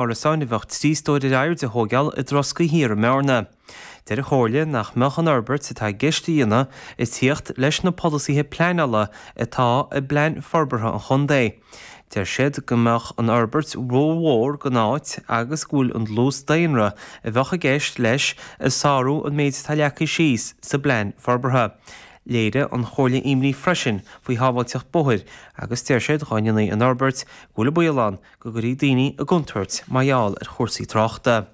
Árasáin a bheadh trí stóir ar airde a thóigheáil i dTroscaigh Thiar i mBearna. Deir an Chomhairle nach mbeadh an fhorbairt atá i gceist a dhéanamh ag tíocht leis na polasaithe pleanála atá i bPlean Forbartha an Chontae. Deir siad go mbeadh an fhorbairt ró-mhór don áit agus go bhfuil an dlús daonra a bheadh i gceist leis ag sárú an méid atá leagtha síos sa bPlean Forbartha. Léirigh an Chomhairle imní freisin faoi shábháilteacht bóthair agus deir siad dhá ndéanfaí an fhorbairt go bhfuil an baol ann go gcuirfí daoine i gcontúirt mar gheall ar chúrsaí tráchta.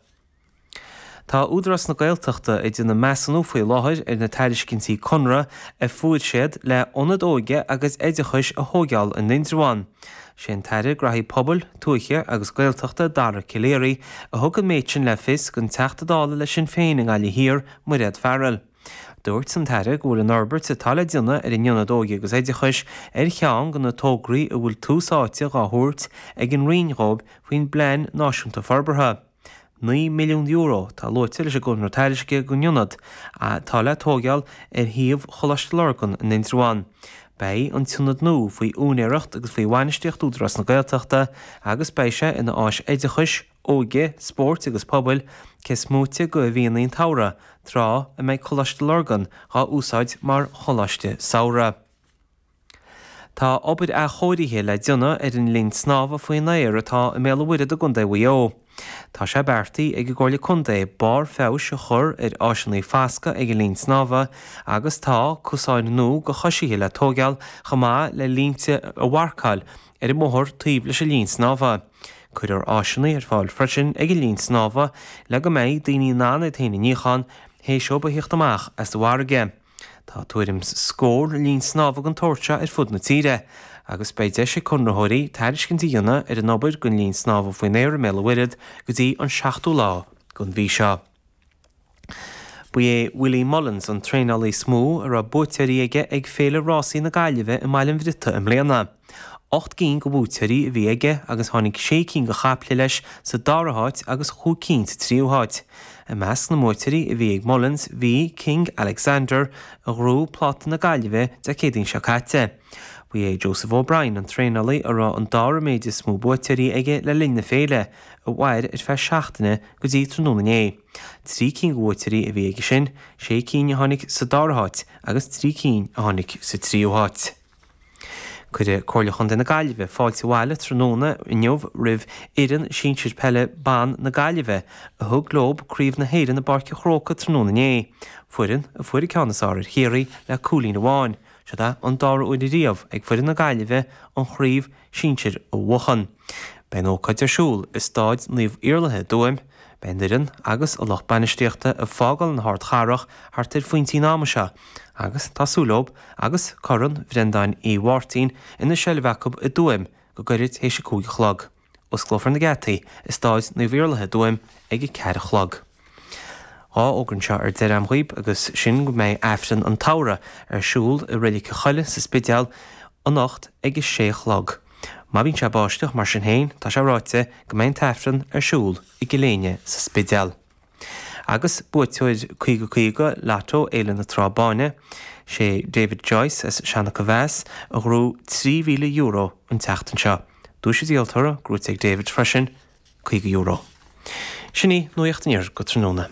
Tá Údarás na Gaeltachta ag déanamh measúnú faoi láthair ar na tairiscintí conartha a fuair siad le h-ionad óige agus oideachais a thóigeáil in Indreabhán. Sé an tAire Gnóthaí Pobail, Tuaithe agus Gaeltachta Dara Calleary a thug an méid sin le fios don Teachta Dála le Sinn Féin i nGaillimh Thiar, Mairéad Farrell. Dúirt an tAire go bhfuil an fhorbairt atá le déanamh ar an Ionad Óige agus Oideachais ar cheann de na tograí a bhfuil tús áite dhá thabhairt ag an Roinn dhóibh faoin bPlean Náisiúnta Forbartha. €9 milliún atá luaite leis an gconradh tairisceana don Ionad atá le tóigeáil ar shuíomh Choláiste Lurgan in Indreabhán. Beidh an tIonad nua faoi úinéireacht agus faoi bhainistíocht Údarás na Gaeltachta agus beidh sé ina áis oideachais, óige, spóirt agus pobail, cés moite de mhíonna an tsamhraidh, tráth a mbeidh Coláiste Lurgan dhá úsáid mar Choláiste Samhraidh. Tá obair athchóirithe le déanamh ar an linn snámha faoin aer atá i mBéal an Mhuirthead i gContae Mhaigh Eo. Tá sé beartaithe ag an gComhairle Contae barr feabhais a chur ar áiseannaí fascaidh ag an linn snámha agus tá cosáin nua do choisithe le tóigeáil chomh maith le línte a mharcáil ar an mbóthar taobh leis an linn snámha. Cuirfear áiseanna ar fáil freisin ag an linn snámha le go mbeidh daoine in ann iad féin a níochán théis dóibh a thíocht amach as an bhfarraige. Tá tuairim 's scór linn snámha den tsórt seo ar fud na tíre agus beidh deis ag conraitheoirí tairiscint a dhéanamh ar an obair don linn snámha faoin aer i mBéal an Mhuirthead go dtí an 7ú lá den mhí seo. Ba é Willie Mullins an traenálaí is mó a raibh buaiteoirí aige ag Féile Rásaí na Gaillimhe i mBaile an Bhriotaigh i mbliana. Ocht gcinn de bhuaiteoirí a bhí aige agus tháinig sé cinn de chaiple leis sa dara háit agus chúig cinn sa tríú háit. I measc na mbuaiteoirí a bhí ag Mullins bhí King Alexander a ghnóthaigh Pláta na Gaillimhe Dé Céadaoin seo caite. Ba é Joseph O'Brien an traenálaí a raibh an dara méid is mó buaiteoirí aige le linn na féile, a mhair ar feadh seachtaine go dtí tráthnóna inné. Trí cinn de bhuaiteoirí a bhí aige sin, sé cinn a tháinig sa dara háit agus trí cinn a tháinig sa tríú háit. Cuirfidh Comhairle Chontae na Gaillimhe fáilte abhaile tráthnóna inniu roimh fhoireann sinsir peile ban na Gaillimhe a thug leo Craobh na hÉireann i bPáirc an Chrócaigh tráthnóna inné, foireann a fuair an ceann is fearr ar Chiarraí le cúilín amháin. Siod é an dara huair riamh ag foireann na Gaillimhe an Chraobh sinsir a bhuachan. Beidh an ócáid ar siúl i Stáid Naomh Iarlaithe i dTuaim. Beidh an fhoireann agus an lucht bainistíochta ag fágáil na hArdchathrach thart ar phointe an ama seo agus tá súil leo agus Corn Bhreandáin Uí Mháirtín ina seilbh acu i dTuaim go gairid tar éis a cúig a chlog. Osclófar na geataí i Stáid Naomh Iarlaithe i dTuaim ag a ceathair a chlog. Dhá fhógra anseo ar deireadh agam dhaoibh agus sin go mbeidh Aifreann an tSamhraidh ar siúl i Reilic na Coille sa Spidéal anocht ag a sé a chlog. Má bhíonn sé ag báisteach, mar sin féin, tá sé ráite go mbeidh an tAifreann ar siúl i gCill Éinne sa Spidéal. Agus buaiteoir Caoga Caoga Lotto Fhéile na Trá Báine, sé David Joyce as Seanach Mhéas a ghnóthaigh trí mhíle euro an tseachtain seo. Duais an díoltóra gnóthaithe ag David freisin, €50. Sin í nuacht an Iarthair go tráthnóna.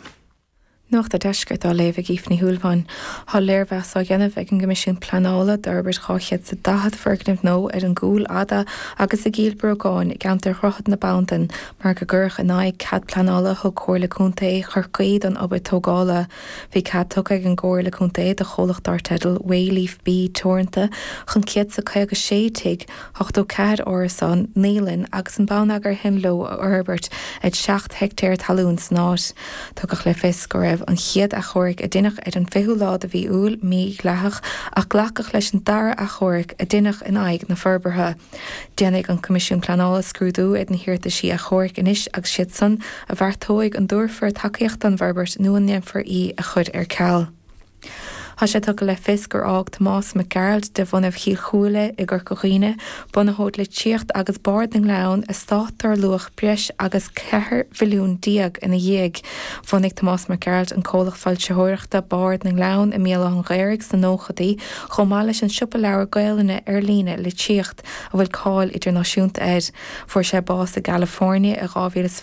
Nuacht a' Deiscirt á léamh ag Aoife Ní Shúilleabháin. Tá léirmheas á dhéanamh ag an gCoimisiún Pleanála d'fhorbairt 200 sa 40 foirgneamh nua ar an gCúil Fhada agus i gCill Brógáin i gceantar Dhroichead na Bandan mar gur cuireadh in aghaidh cead pleanála a thug Comhairle Contae Chorcaí don obair tógála. Bhí cead tugtha ag an gComhairle Contae do chomhlacht dár teideal Wayleaf B Teoranta chun 100 sa 56 tigh 84 árasán, naíolann agus an bonneagar a théann leo a fhorbairt ar 7 heictéar talún san áit. Tugadh le fios go raibh an chéad athchomharc a dineadh ar an 20ú lá de mhí Iúil mí-dhleathach ach glacadh leis an dara athchomharc a dineadh in aghaidh na forbartha. Déanfaidh an Coimisiún Pleanála scrúdú ar na hiarrataisí athchomhairc anois agus siad san a bheartóidh an dtabharfar tacaíocht don bhforbairt nó an ndéanfar í a chur ar ceal. Thá sé tugtha le fios gur fhág Tomás Mac Gearailt de bhunadh Chill Chúile i gCorca Dhuibhne, bunaitheoir Litríocht agus Bard na nGleann, eastát dár luach breis agus cheithre mhilliún déag ina dhiaidh. Bhunaigh Tomás Mac Gearailt an comhlacht foilsitheoireachta Bard na nGleann i mBéal Átha'n Ghaorthaidh sna nóchadaí chomh maith leis an siopa leabhar Gaelainne ar líne, Litríocht, a bhfuil cáil idirnáisiúnta air. Fuair sé bás i gCalifoirnea i 2020.